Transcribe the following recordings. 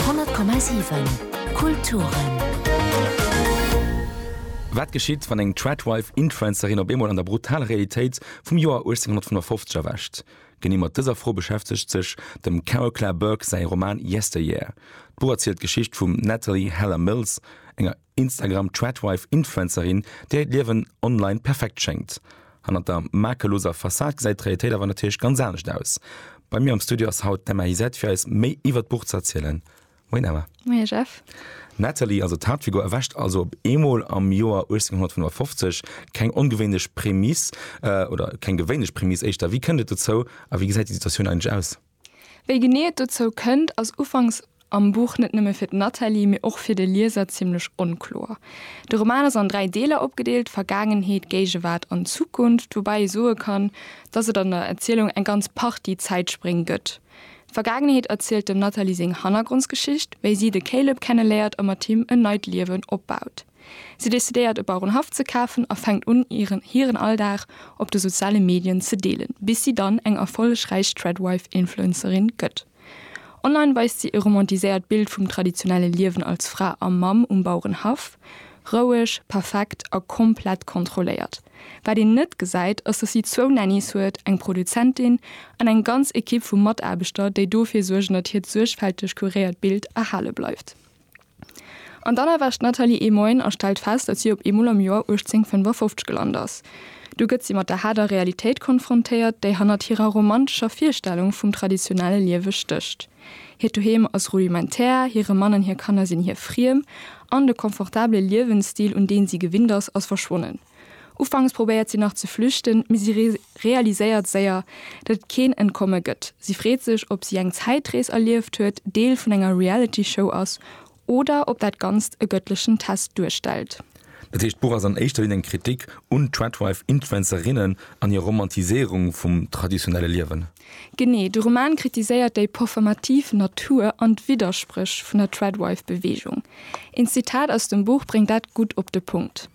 100,7 Kulturen. Wat geschitt, wann eng Tradwife-Influencerin op eemol an der brutaler Realitéit vum Joer 1855 erwächt? Genee mat dëser Fro beschäftegt sech dem Carol Clare Burke säi Roman Yesteryear. D'Buch erzielt d'Geschicht vum Natalie Heller Mills, enger. Instagram-Tradwife-Influencerin, där hiert Liewen online perfekt schéngt. Hannert der makelloser Fassad gesäit d'Realitéit awer natierlech ganz anescht aus. Bei mir am Studio ass haut d'Emma Hizet fir eis méi iwwert d'Buch ze erzielen. Moien Emma. Moien Jeff. D'Nathalie, also d'Haaptfigur, erwächt also op eemol am Joer 1855. Keng ongewéinlech Prämiss, oder keng gewéinlech Prämiss éischter. Wéi kënnt et dozou a wéi gesäit déi Situatioun eigentlech aus? Wéi genee et dozou kënnt, ass ufanks am Buch net nëmme fir d'Nathalie, mee och fir de Lieser zimmlech onkloer. De Roman ass an dräi Deeler opgedeelt, Vergaangenheet, Géigewaart an Zukunft, woubäi ee soe kann, datt et an der Erzielung eng ganz Partie Zäitspréng gëtt. D'Vergaangenheet erzielt dem Nathalie seng Hannergrondsgeschicht, wéi si de Caleb kenneléiert a mat him en neit Liewen opbaut. Si decidéiert e Bauerenhaff ze kafen a fänkt un hiren Alldag op de soziale Medien ze deelen, bis si dann eng erfollegräich Threadwife-Influencerin gëtt. Online weist si e romantiséiert Bild vum traditionelle Liewen als Fra a Mamm um Bauerenhaff, roueg, perfekt a komplett kontrolléiert. Wat een net gesäit, ass dass si zwou Nannys huet, eng Produzentin an eng ganz Ekipp vu Mataarbechter, déi dofir suergen dat hiert suergfälteg kuréiert Bild erhale bleift. An dann erwächt d'Nathalie ee Moien a stellt fest, datt si op eemol am Joer 1855 gelant ass. Du gëtt si mat der haarder Realitéit konfrontéiert, déi hannert hirer romantescher Virstellung vum traditionelle Liewe stécht. Hiert Doheem ass rudimentär, hire Mann an hir Kanner sinn hir friem, an de confortabele Liewensstil, un deen si gewinnt ass, ass verschwonnen. Ufanks probéiert si nach ze flüchten, mee si realiséiert séier, datt et keen Entkomme gëtt. Si freet sech, ob si eng Zäitrees erlieft huet, Deel vun enger Reality-Show ass oder ob dat Ganzt e gëttlechen Test duerstellt. Dat heescht, d'Buch ass an éischter Linn eng Kritik un Tradwife-Influencerinnen an hir Romantiséierung vum traditionelle Liewen. Genee. De Roman kritiséiert déi performativ Natur an d'Widderspréch vun der Tradwife-Beweegung. Een Zitat aus dem Buch bréngt dat gutt op de Punkt.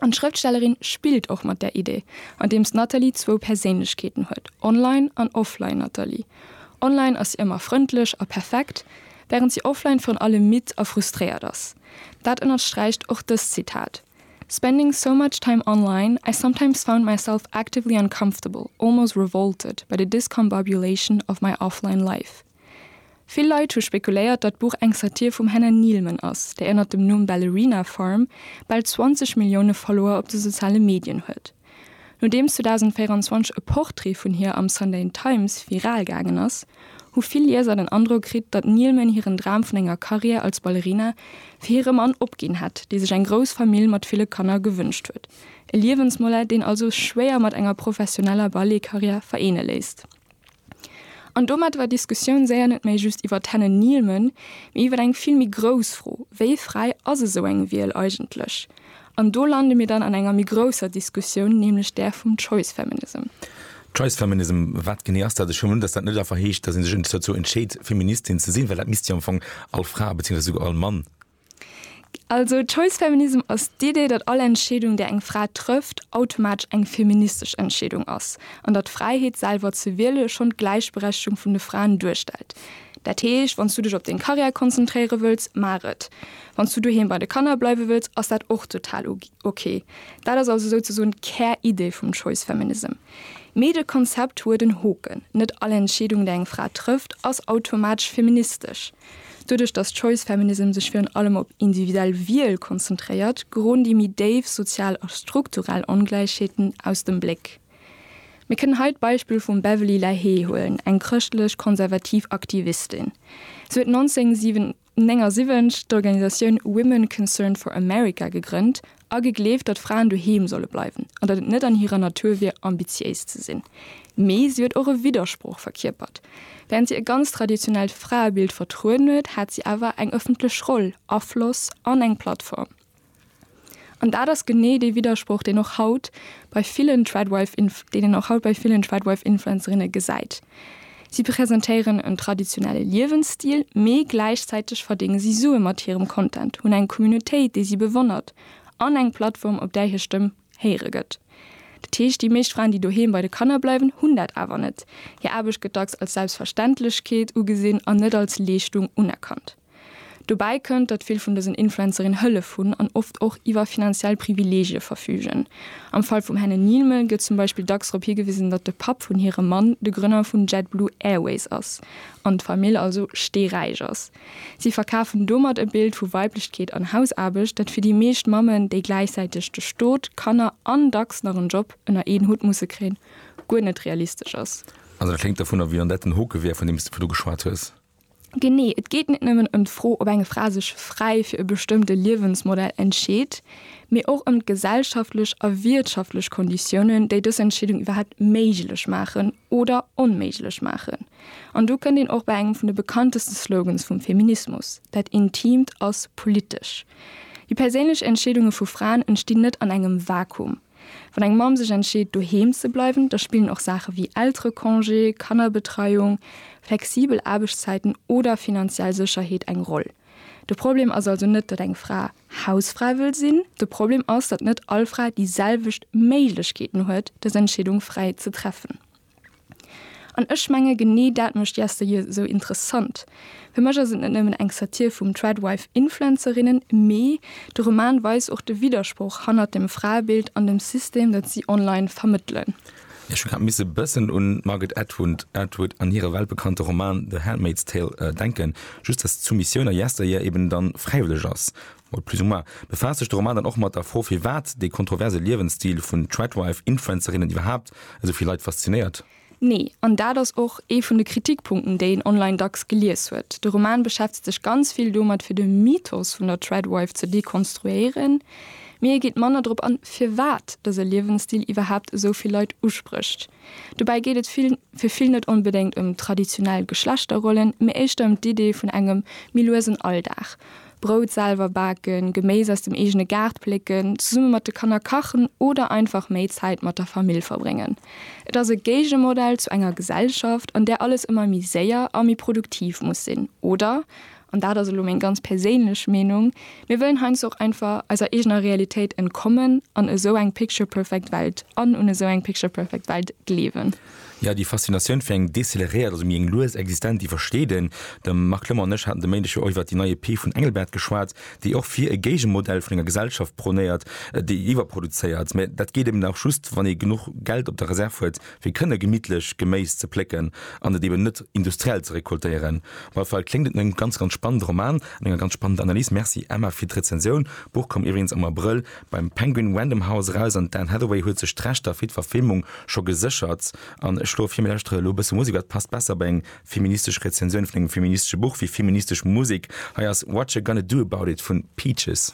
An d'Schrëftstellerin spillt och mat där Idee, andeems d'Nathalie zwou Perséinlechkeeten huet, Online an Offline Nathalie. Online ass si ëmmer frëndlech a perfekt, wärend si offline virun allem midd a frustréiert ass. Dat ënnersträicht och dëst Zitat, Spending so much time online, I sometimes found myself actively uncomfortable, almost revolted, by the discombobulation of my offline life. Vill Leit hu spekuléiert, datt d'Buch eng Satir vum Hannah Neilman ass, déi ënnert dem Numm Ballerina Farm bal 20 Millioune Follower op de soziale Medien huet. Nodeems 2024 e Porträt vun hir am Sunday Times viral gaangen ass, hu vill Lieser den Androck kritt, datt Neilman hiren Dram vun enger Karriär als Ballerina fir hire Mann opginn hätt, dee sech eng grouss Famill mat ville Kanner gewënscht huet. E Liewensmodell, deen also schwéier mat enger professioneller Balletkarriär vereene léisst. An domat war d'Diskussioun séier net méi just iwwer d'Henne Neilman, mee iwwer eng vill méi grouss Fro, Wéi fräi ass esou eng Wiel eigentlech? An do lande mir dann an enger méi grousser Diskussioun, nämlech där vum Choice Feminism. Choice Feminism, wat genee ass dat? Ech huelen un, datt dat net einfach heescht, datt ee sech dozou entscheet, Feministin ze sinn, well dat misst jo am Fong all Fra, beziéiungsweis esouguer all Mann Also Choice Feminism ass d'Idee, datt all Entscheedung, déi eng Fra trëfft, automatesch eng feministesch Entscheedung ass, an datt d'Fräiheet, selwer ze wiele schonn d'Gläichberechtegung vun de Fraen duerstellt. Dat heescht, wann s du dech op deng Karriär konzentréiere wëlls, maach et. Wann s du doheem bei de Kanner bleiwe wëlls, ass dat och total ok. Dat ass also souzesoen d'Käridee vum Choice Feminism. Mee de Konzept huet en Hoken, Net all Entscheedung, déi eng Fra trëfft, ass automatesch feministesch. Doduerch datt Choice Feminism sech virun allem op individuell Wiel konzentréiert, geroden déi méi déif sozial a strukturell Ongläichheeten aus dem Bléck. Mir kënnen hei d'Beispill vum Beverley Lahé huelen, eng chrëschtlech-konservativ Aktivistin. Si huet 1979 d'Organisatioun Women Concerned for America gegrënnt A gegleeft, datt Fraen doheem solle bleiwen an datt et net an hirer Natur wier, ambitiéis ze sinn. Mee si huet och e Widdersproch verkierpert. Während si e ganz traditionellt Fraebild vertrueden huet, hat si awer eng ëffentlech Roll, Afloss an eng Plattform. An dat ass genee dee Widdersproch, deen och haut bei villen Tradwife-Influencerinne gesäit. Si presentéieren en traditionelle Liewensstil, mee gläichzäiteg verdénge si Sue mat hirem Content, hunn eng Communautéit, déi si bewonnert, an eng Plattform, op där hir Stëmm héiere gëtt. Dat heescht, déi meescht Fraen, déi doheem bei de Kanner bleiwen, hunn dat awer net. Hir Aarbecht gëtt dacks als Selbstverständlechkeet ugesinn an net als Leeschtung unerkannt. Dobäi kënnt, datt vill vun dësen Influencerinnen Hëllef hunn an oft och iwwer finanziell Privileegie verfügen. Am Fall vum Hannah Neilman gëtt zum Beispill dacks drop higewisen, datt de Papp vun hirem Mann de Grënner vun JetBlue Airways ass an d'Famill also steeräich ass. Si verkafen domat e Bild vu Weiblechkeet an Hausaarbecht, dat fir déi meescht Mammen, déi gläichzäiteg de Stot, Kanner an dacks nach en Job ënner een Hutt musse kréien, guer net realistesch ass. Also dat kléngt dovunner, wéi wann dat den Hoke wär, vun deem s de virdu geschwat hues. Genee, et geet net nëmmen ëm d'Fro, ob eng Fra sech fräi fir e bestëmmte Liewensmodell entscheet, mee och ëm d'gesellschaftlech a wiertschaftlech Konditiounen, déi dës Entscheedung iwwerhaapt méiglech maachen oder onméiglech maachen. An do kënnt een och bei engem vun de bekannteste Slogans vum Feminismus, Dat Intiimt ass politesch. Déi perséinlech Entscheedunge vu Fraen entstinn net an engem Vakuum. Wann eng Mamm sech entscheet doheem ze bleiwen, da spillen och Saache wéi Elterecongé, Kannerbetreiung, flexibel Aarbechtszäiten oder finanziell Sécherheet eng Roll. De Problem ass also net, datt eng Fra Hausfra wëll sinn, de Problem ass, datt net all Fra déi selwecht Méiglechkeeten huet, dës Entscheedung fräi ze treffen. An ech menge genee dat mécht Yesteryear esou interessant. Fir mech ass et net nëmmen eng Satir vum Tradwife-Influencerinnen, mee de Roman weist och de Widdersproch hannert dem Fraebild an dem System, dat si online vermëttelen. Ech hu grad misse e bëssen un d'Margaret Atwood Atwood an hire weltbekannte Roman The Handmaid's Tale denken, just dass d'Soumissioun a Yesteryear eben dann fräiwëlleg ass Mol plus ou moins, befaasst sech de Roman dann och mat der Fro, firwat dee kontroverse Liewensstil vun Tradwife-Influencerinnen iwwerhaapt esou vill Leit faszinéiert. Nee, an dat ass och ee vun de Kritikpunkten, déi een online dacks gelies huet. De Roman beschäftegt sech ganz vill domat, fir de Mythos vun der Tradwife ze dekonstruéieren, mee e geet manner drop an, firwat dëse Liewensstil iwwerhaapt esou vill Leit usprécht. Dobäi geet et fir vill net onbedéngt ëm traditionell Geschlechterrollen, mee éischter ëm d'Idee vun engem méi luesen Alldag. Brout selwer baken, Geméis aus dem eegene Gaart plécken, zesumme mat de Kanner kachen oder einfach méi Zäit mat der Famill verbréngen. Et ass e Géigemodell zu enger Gesellschaft, an där alles ëmmer méi séier a méi produktiv muss sinn. Oder, an dat ass elo meng ganz perséinlech Meenung, mir wëllen heiansdo och einfach eiser eegener Realitéit entkommen an esou eng picture-perfect Welt an un esou eng picture-perfect Welt gleewen. Jo, déi Faszinatioun fir eng deceleréiert, also méi eng lues Existenz, déi versteet een. De Marc Lemmer an ech haten de Méindeg jo och iwwer déi nei EP vun Engelbert geschwat, déi och fir e Géigemodell vun enger Gesellschaft prônéiert, déi iwwerproduzéiert. Mä dat geet eben och just, wann ee genuch Geld op der Reserv huet, fir kënne gemittlech Geméis ze plécken an et eben net industriell ze recoltéieren. Op alle Fall kléngt et no engem ganz, ganz spannende Roman an enger ganz spannender Analys. Merci, Emma, fir d'Rezensioun. D'Buch koum iwweregens am Abrëll Beim Penguin Random House eraus an d'Anne Hathaway huet sech d'Rechter fir d'Verfilmung scho geséchert. An ech schloe vir, mir lauschtere elo e bësse Musek, wat passt besser bei eng feministesch Rezensioun vun engem feministesche Buch wéi feministesch Musek. Hei ass Whatcha Gonna Do About It vun Peaches.